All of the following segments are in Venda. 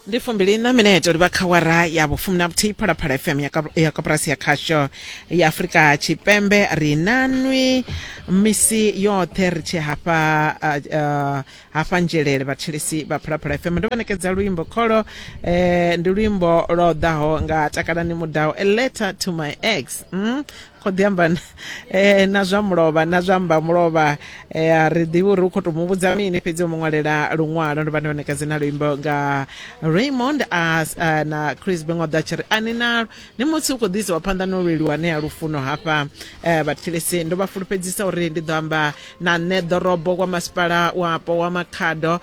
ndi fumbili na minete uri vha kha wara ya vhufumi na vhuthihi phalaphala fm ya Kap- ya koporasi ya khasho ya afurika tshipembe ri na nwi misi yoṱhe ri tshi hafha ah, ah, hafha nzhelele vhathelesi vha phalaphala fm ndo vha ṋekedza luimbo kholo eh, ndi luimbo lwo ḓaho nga takalani mudau a letter to my ex mm? kho ḓi amba eh, na zwa mulovha na zwa mba mulovha eh, a ri ḓivhi uri u khou tou mu vhudza mini fhedzi o mu ṅwalela luṅwalo ndo vha ndi vhanekedzi na luimbo nga raymond as eh, na chris bengoda tshi ri ani nalo ni musi u khou ḓisa wa phanḓa no lweliwa ne ya lufuno hafha vhathilisi ndo vha fulufhedzisa uri ndi ḓo amba na nṋe ḓorobo kwa masipala wapo wa makhado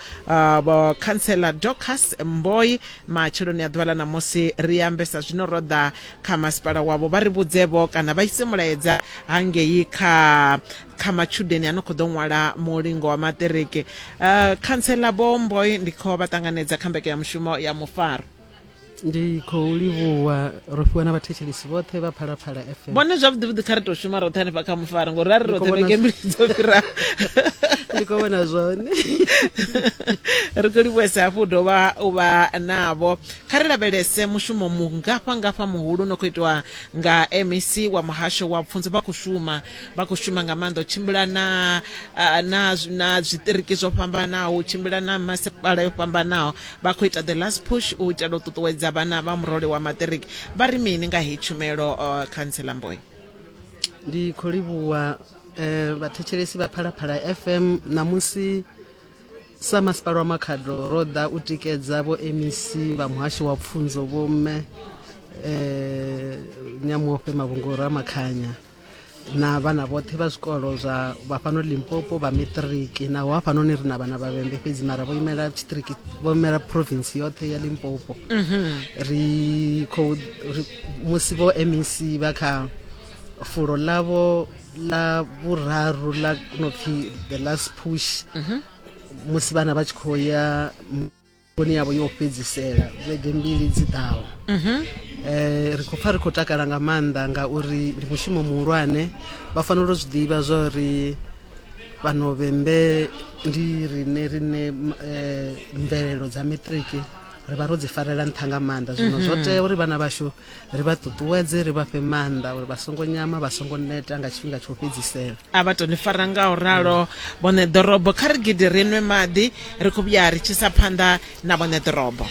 vho khantsela docas mboi matsheloni a ḓuvha ḽa ṋamusi ri ambesa zwino ro ḓa kha masipala wavho vha ri vhudzevho kana vha ise mulaedza hangei kha kha matshudeni a no khou ḓo ṅwala mulingo wa maṱiriki uh, khantsela bomboi ndi khou vha ṱanganedza kha mbeke ya mushumo ya mufaro ndi khou livhuwa ro fhiwa na vhathetshelisi vhoṱhe vha phalaphala fm vhone zwavhuḓivhuḓi kha ri tou shuma roṱhe hanefha kha mufaro ngori ra ri roṱhe vhege mbili dzo fhiraho ndi khou vhona zwone ri khou livhuwesa hafhu u dovha u vha navho Kha ri lavhelese mushumo mungafha-ngafha muhulu u no khou itwa nga MEC wa Muhasho wa Pfunzo. Vha khou shuma, vha khou shuma nga maanḓa u tshimbila na na na zwiṱiriki zwo fhambanaho, u tshimbila na masipala yo fhambanaho. Vha khou ita the last push u itela u ṱuṱuwedza vhana vha murole wa maṱiriki. Vha ri mini nga heyi tshumelo, Khantsela Mboyo? Ndi khou livhuwa vhathetshelesi vha Phalaphala FM ṋamusi sa masipala wa makhado ro ḓa u tikedza vho mec vha muhasho wa pfunzo vho mme eh, nyamuofhe mavhungoro a makhanya na vhana vhoṱhe vha zwikolo zwa vha fhano limpopo vha matriki naho hafhanoni ri na vhana vha vhembe fhedzi mara vho imela tshiṱiriki vho imela province yoṱhe ya limpopo ri khou ri- musi vho mec vha kha fulo ḽavho la vhuraru la no pfi the last push mhm. musi vhana vha tshi khou ya vhoni yavho yo fhedzisela vhege mbili dzi ḓaho mhm. eh, ri khou pfa ri khou takala nga maanḓa ngauri ndi mushumo muhulwane vha fanela u zwi ḓivha zwa uri vhanovembe ndi rine rine eh, mvelelo dza matriki ri vha ro dzi farela nṱha nga maanḓa zwino zwo mhm. tea uri vhana vhashu ri vha ṱuṱuwedze ri vha fhe maanḓa uri vha songo nyama vha songo neta nga tshifhinga tsho fhedzisela a vha toni fara nga u ralo vhone ḓorobo kha ri gidi ri nwe maḓi ri khou vhuya ri tshisa phanḓa na vhone ḓorobo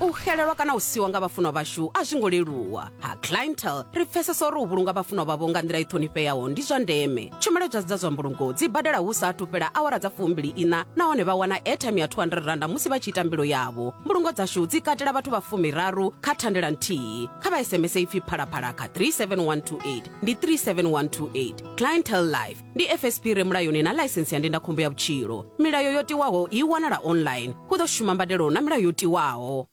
u xelelwa kana u siwa nga vhafunwa vhashu a zwi ngo leluwa ha clientele ri pfesesa uri u vhulunga vhafunwa vhavho nga nḓila i ṱhonifheaho ndi zwa ndeme tshumelo dza dza zwa mbulungo dzi badela hu sa athu fhela awara dza fumbili ina nahone vha wana airtime ya 200 randa musi vha tshi ita mbilo yavho mbulungo dzashu dzi katela vhathu vha fumiraru kha thandela nthihi kha vha sms ipfi phalaphala kha 37128 ndi 37128 clientel life ndi fsp re mulayoni na ḽaisensi ya ndindakhombo ya vhutshilo milayo yo tiwaho i wanala online hu ḓo shuma mbadelo na milayo yo tiwaho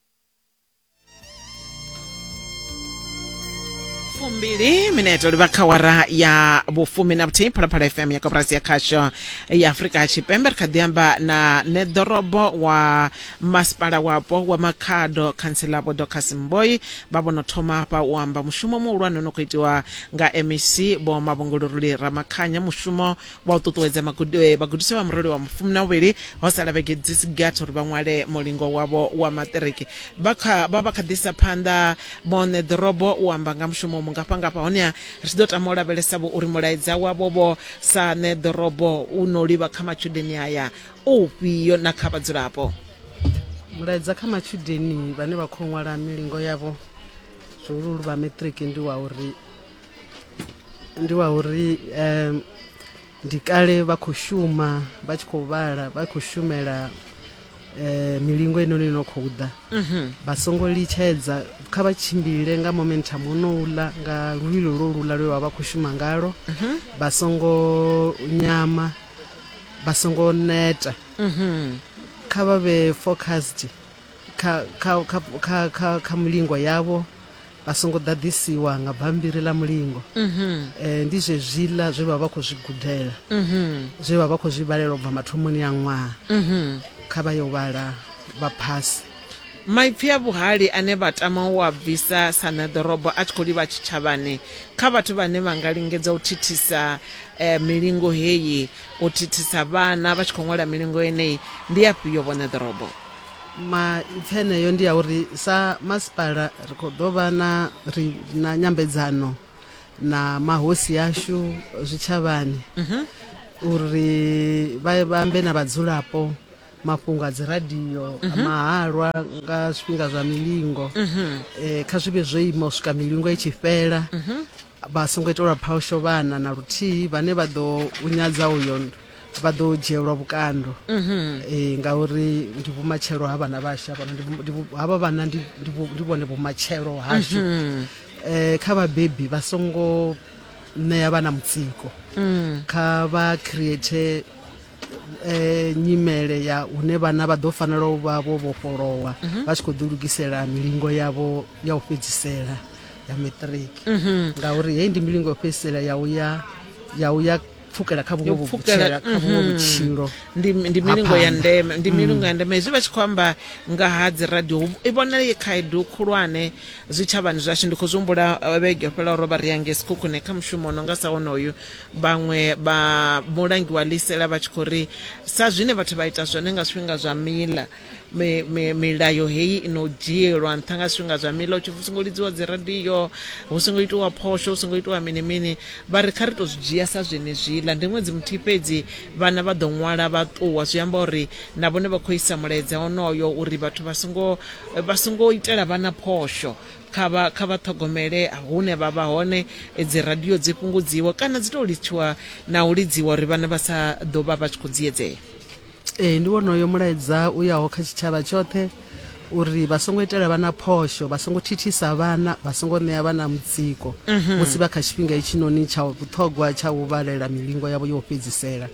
fumbili mineto livha kha wara ya vhufumi na vhuthihi phalaphala fm ya koporasi ya khasho ya afurika tshipembe ri kha ḓi amba na neḓorobo wa masipala wapo wa makhado khantsela vho docas mboi vha vhono thoma hafha u amba mushumo muhulwane no khou itiwa nga mec vho mavhunguluruli ramakhanya mushumo wa u ṱuṱuwedza eh, vhagudiswa vha murole wa mufumi na uvhili ho sala vhege dzi si gathi uri vha ṅwale mulingo wavho wa maṱiriki vha vha kha ḓisa phanḓa vhone ḓorobo u amba nga mushumo mungafhangafha honeha ri tshi ḓo tama u lavhelesa vho uri mulaedza wavho vho sa ne ḓorobo u no livha kha matshudeni aya u fhio na kha vhadzulapo mulaedza kha matshudeni vhane vha khou ṅwala milingo yavho zwihuluhulu vha maṱiriki ndi wa uri ndi wa uri um, ndi kale vha khou shuma vha tshi khou vhala vha khou shumela eh, milingo ino ni no khou ḓa mhm. vha songo litshedza kha vha tshimbile nga momentum ono ula nga luvhilo lwo lula lwe vha vha khou shuma ngalo mhm. vha songo nyama vha songo neta mhm. kha vha vhe focused kha, kha, kha, kha, kha, kha mulingo yavho a songo ḓaḓisiwa nga bambiri ḽa mulingo um ndi zwezwiḽa zwe vha vha khou zwi gudela um zwe vha vha khou zwi vhalela u bva mathomoni a ṅwaha um kha vha yo vhala vha phasi maipfi a vhuhali ane vha tama u a bvisa sa ṋeḓorobo a tshi khou livha tshitshavhani kha vhathu vhane vha nga lingedza u thithisa eh, milingo heyi u thithisa vhana vha tshi khou ṅwala milingo yeneyi ndi afhio vho ṋeḓorobo maipfi eneyo ndi ya uri sa masipala ri khou ḓo vha na ri na nyambedzano na mahosi ashu zwitshavhani uri vha vha ambe na vhadzulapo mafhungo a dziradio a mahalwa nga zwifhinga zwa milingo eh, kha zwi vhe zwo ima u swika milingo i tshi fhela vha songo itelwa phawusho vhana na luthihi vhane vha ḓo u nyadza uyo vha ḓo dzhielwa vhukando mhm. eh, ngauri ndi vhumatshelo ha vhana vhashu havha vhana ndi vhone vhumatshelo hashu mhm. eh, kha vhabebi vha songo ṋea vhana mutsiko mm. kha vha create eh, nyimele ya hune vhana vha ḓo fanela u vha vho vhofholowa mhm. vha tshi khou ḓilugisela milingo yavho ya u fhedzisela ya matric mhm. ngauri heyi ndi milingo yo fhedzisela ya u ya ya u ya pfukela kha vhuṅwe vhutshela kha vhuṅwe mm. vhutshilo ndi ndi milingo ya ndeme ndi mm. milingo ya ndeme hezwi vha tshi khou amba nga ha dzi radio i vhona ye khaedu khulwane zwitshavhani zwashu ndi khou zwi humbula eh, vhege yo fhela ro vha ri yange sikhukhune kha mushumo no nga sa wonoyu vhaṅwe vha mulangi wa lisela vha tshi khou ri sa zwine vhathu vha ita zwone nga zwifhinga zwa mila mi- mi- milayo heyi i no dzhielwa nṱha nga zwifhinga zwa mila utshi hu songo lidziwa dzi radio hu songo itiwa phosho hu songo itiwa mini mini vha ri kha ri to zwi dzhia sa zwenezwiḽa ndi ṅwedzi muthihi fhedzi vhana vha ḓo ṅwala vha ṱuwa zwi amba uri na vhone vha khou isa mulaedza onoyo uri vhathu vha songo vha songo itela vhana phosho Kha vha kha vha ṱhogomele hune vha vha hone, dzi radio dzi fhungudziwe kana dzi tou litshiwa na u lidziwa uri vhana vha sa ḓo vha vha tshi khou dziedzea. Ee, ndi wonoyo mulaedza u yaho kha tshitshavha tshoṱhe uri vha songo itela vhana phosho, vha songo thithisa vhana, vha songo ṋea vhana mutsiko musi vha kha tshifhinga hetshinoni tsha vhuṱhogwa tsha u vhalela milingo yavho yo u fhedzisela.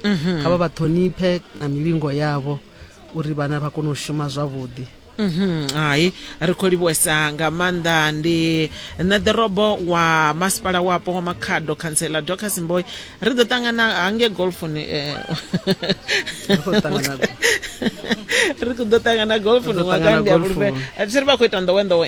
Kha vha vha ṱhoniphe na milingo yavho uri vhana vha kone u shuma zwavhuḓi. Mhm, hai ri khou livhuwesa nga maanḓa ndi nṋe ḓorobo wa masipala wapo wa makhado khantsela docas mboy ri ḓo ṱangana hange golfoni eh, ri khou ḓo ṱangana golfoni Ri ḓo ṅwakani ṱangana ndi a golfoni. fhulufhela a thi ri vha khou ita nḓowenḓowe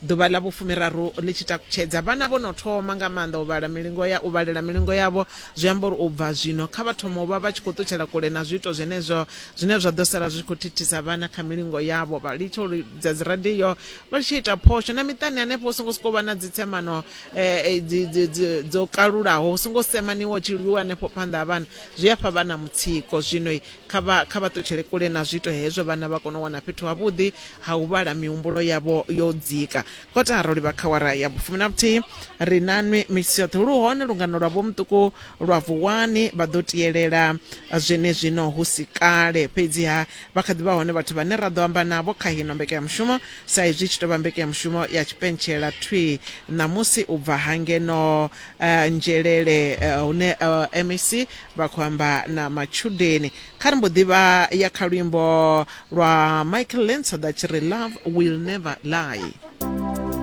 Ḓuvha ḽa vhufumiraru ḽi tshi takutshedza, vhana vho no thoma nga maanḓa u vhala milingo ya u vhalela milingo yavho, zwi amba uri u bva zwino kha vha thome u vha vha tshi khou ṱutshela kule na zwiito zwenezwo zwine zwa ḓo sala zwi tshi khou thithisa vhana kha milingo yavho, vha litshe u lidza dziradio vha litshe u ita phosho na miṱani hanefho hu songo sokou vha na dzitsemano dzo kalulaho, hu songo semaniwa hu tshi lwiwa hanefho phanḓa ha vhana, zwi a fha vhana mutsiko. Zwino kha vha kha vha ṱutshele kule na zwiito hezwo vhana vha kone u wana fhethu havhuḓi ha u vhala mihumbulo yavho yo dzika kotara ro livha kha wara ya vhufumi na vhuthihi ri na nwi misi yoṱhe lu hone lungano lwa vho muṱuku lwa vuwani vha ḓo tiyelela zwenezwino hu si kale fhedziha vha kha ḓi vha hone vhathu vhane ra ḓo amba navho kha hino mbekanyamushumo sa izwi tshi tou vha mbekanyamushumo ya tshipentshela thwi ṋamusi u bva hangeno uh, eh, nzhelele uh, eh, hune uh, eh, mec Vha khou amba na matshudeni. Kha ri mbo ḓi vha ya kha luimbo lwa Michael Lentsoda tshi ri Love Will Never Lie.